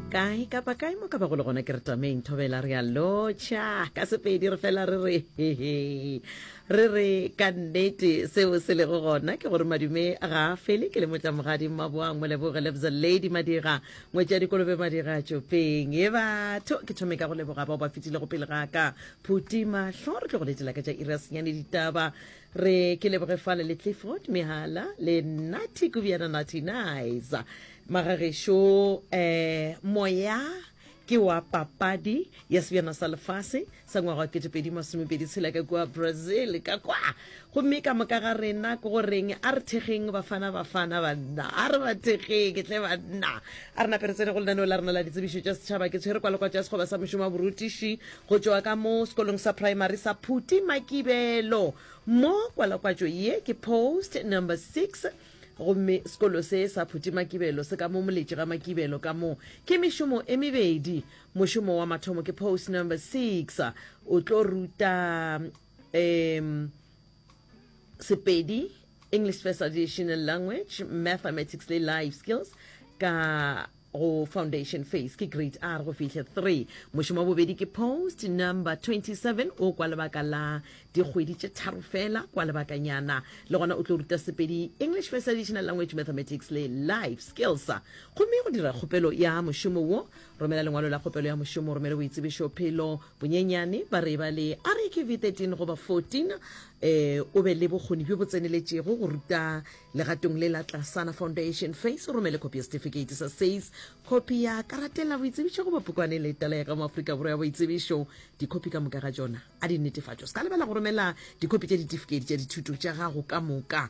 kae kapa kae mo ka ba go le gona ke re tameng thobela re a lotšha ka sepedi re fela re re hehe re re ka nnete seo se lego gona ke gore madume ga a fele ke le motlamogadi mmaboang moleboge lebza lady madira ngwetša dikolobe madira tšopeng e batho ke thome ka go leboga bao ba fetilego pele ga ka phutima tlho re tlo go letela ka tša iri ya senyane ditaba re ke leboge fale le clifford mehala le nati kubjana nati nice magagešo um moya ke wa papadi ya sebjana sa lefase sa ngwaga wa ketepedi masomepedi tshela ka kua brazil ka kwa gomme ka moka ga rena ko goreng a re thekgeng bafana bafana banna a re ba thekgeng tle banna a re naperetsene go lenaneo la rena la ditsebišo tša setšhaba ke tshwere kwa lekwa tša sekgoba sa mošomo wa borutiši Go tšwa ka mo sekolong sa praemari sa Phuti Makibelo mo kwalakwatšo ye ke post number six gomme sekolo se sa Phuti Makibelo se ka mo moletši ga Makibelo ka mo ke mešomo e mebedi. Mošomo wa mathomo ke post number six o tlo ruta um Sepedi, English First Additional Language, Mathematics le Life Skills ka go foundation phase ke grade r go fihle 3 mošomo wa bobedi ke post number 27 o kwa lebaka la dikgwedi tše tharo fela kwa lebakanyana le gona o tlo ruta sepedi english first additional language mathematics le life skills gomme go dira kgopelo ya mošomo wo romela lengwalo la kgopelo ya mošomo romele boitsebišo phelo bonyenyane ba re ba le rakv 13 goba 14 um o be le bokgoni bjo bo tseneletšego go ruta Legatong le la Tlasana Foundation Face o romele khopi ya setifikeiti sa SACE, khopi ya karatela boitsebišo goba pukwane le tala ya ka mo Afrika Borwa ya boitsebišo. Dikhopi ka moka ga tšona a di netefatšwa. Se ka lebala go romela dikhopi tša ditifikeiti tša dithuto tša gago ka moka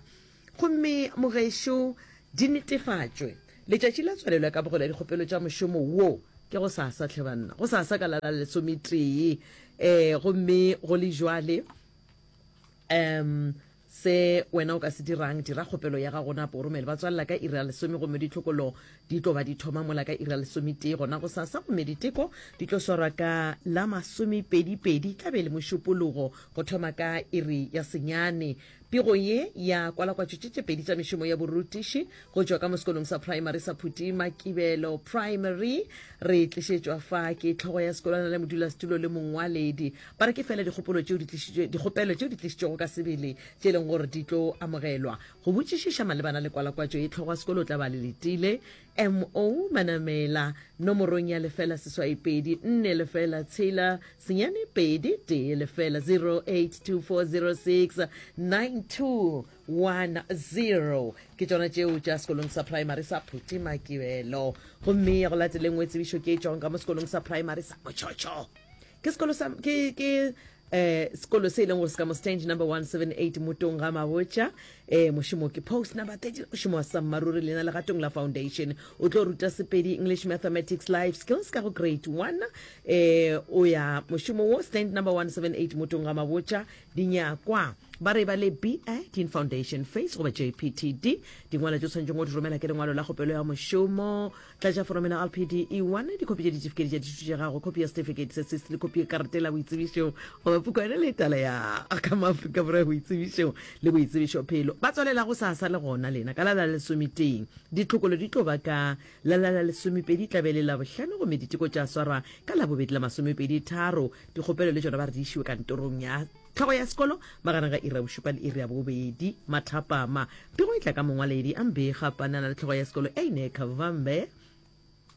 gomme mogešo di netefatšwe. Letšatši la tswalelo ya kabogelo ya dikgopelo tša mošomo wo ke gosasa, hle banna, gosasa ka la la lesometee. Um gomme go le bjale um Se wena o ka se dirang, dira kgopelo ya gago napo o romele batswalela ka iri ya lesome gomme ditlhokolo di tlo ba di thoma mola ka iri ya lesometee gona go sasa gomme diteko di tlo swarwa ka la masomepedipedi tla be le mošupologo go thoma ka iri ya senyane. Pego ye ya kwalakwatšo tše tše pedi tša mešomo ya borutiši Go tšwa ka mo sekolong sa praemari sa Phuti Makibelo Primary re tlišetšwa fa ke tlhogo ya sekolwana le modulasetulo le mongwaledi ba re ke fela dikgopolo tšeo dikgopelo tšeo di tlišitšwego ka sebele tše e leng gore di tlo amogelwa go botšišiša malebana le kwalakwatšo ye tlhogo ya sekolo o tla ba le letile mo manamela nomorong ya lefela seswai pedi nne lefela tshela senyane pedi tee lefela 08240692 1 0 ke tšona tšeo tša sekolong sa primary sa phutemakibelo gomme ya go latele nngwe tsebišo ke e tšwang ka mo sekolong sa primary sa motšhotšho ke sekolo sa ke ke eh sekolo se e leng gore se ka mo stange number 178 motong ga mabotša eh mošomo ke post number 30 mošomo wa sammaruri lena legatong la foundation o tlo ruta sepedi english mathematics life skills ka go grade 1 eh o ya mošomo wo stand number 178 motong ga mabotša Dinyakwa ba re ba le BA, Teen Foundation, FACE goba JPTD. Dingwalo tše tshwanetšeng go di romela ke lengwalo la kgopelo ya mošomo, tlatša foromo ya LPDE-1, dikhopi tša ditifiketi tša dithuto tša gago, khopi ya setifikeiti sa SIST le khopi ya karete la boitsebišo goba pukwana le tala ya ka mo Afrika Borwa ya boitsebišo le boitsebišophelo. Ba tswalela gosasa le gona lena ka la la lesometee. Ditlhokolo di tlo ba ka La la la lesomepedi tla be le la bohlano gomme diteko tša swarwa ka labobedi la masomepedi tharo. Dikgopelo le tšona ba re di išiwe kantorong ya tlhogo ya sekolo magareng ga iri ya bošupa le iri ya bobedi mathapama. Pego e tla ka mongwaledi a mbega panana le tlhogo ya sekolo Eine Kavambe.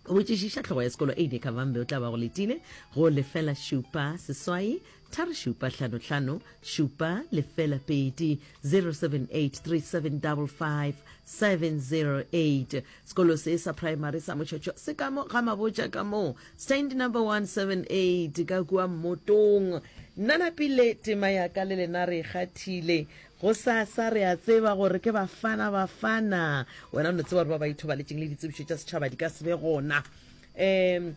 Go botšišiša tlhogo ya sekolo Eine Kavambe o tla ba go letile go lefela šupa seswai Tharo šupa hlano hlano šupa lefela pedi 0783755708 Sekolo se sa praemari sa Mochocho se ka mo ga Mabotja ka mo stand number 178 ka kua Mmotong. Nna Napile tema ya ka le lena re kgathile. Gosasa re a tseba gore ke Bafana Bafana. Wena o no tseba gore ba ba ithobaletšeng le ditsebišo tša setšhaba di ka se be gona. Um,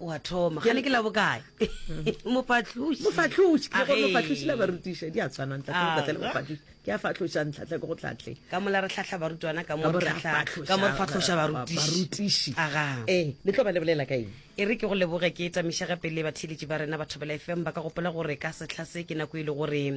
wa thoma ga ne ke la bokae mopatloši mofahloši ke gore mofahloši la barutiša di a tshwana ntlhatlhe go tlatlhe le mofahloši ke a fahloša ntlhatlhe ke go tlatlhe ka mola re tlhatlha barutwana ka mo re fahloša barutiši ee le tlo ba lebolela ka eng e re ke go leboge ke etamišega pele batheeletši ba rena batho bela fm ba ka gopola gore ka setlha se ke nako e le gore um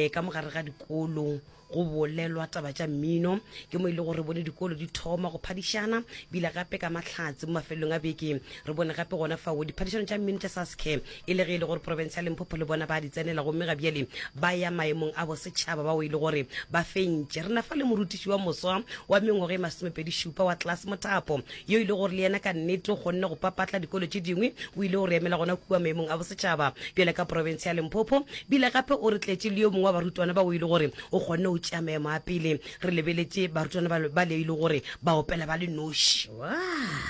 ka mogare ga dikolo go bolelwa taba tša mmino ke mo e le gore re bone dikolo di thoma go phadišana bile gape ka mahlatse mo mafelelong a beke re bone gape gona fao diphadišano tša mmino tša saske e le ge e le gore porofense ya lemphopho le bona ba di tsenela gomme ga bjale ba ya maemong a bosetšhaba bao e le gore ba fentše re na fa le morutiši wa moswa wa mengwaga e masomepedi šupa wa tlase mothapo yo e le gore le yena ka nnete o kgonne go papatla dikolo tše dingwe o ile go re emela gona kua maemong a bosetšhaba bjale ka porofense ya lemphopho bile gape o re tletše le yo mongwe wa barutwana ba o e le gore o kgonne go tšea maemo a pele re lebeletše barutwana ba ba le e le gore ba opela ba le noši Wow.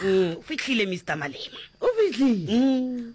Mm, o fihlile mr malema o fihlile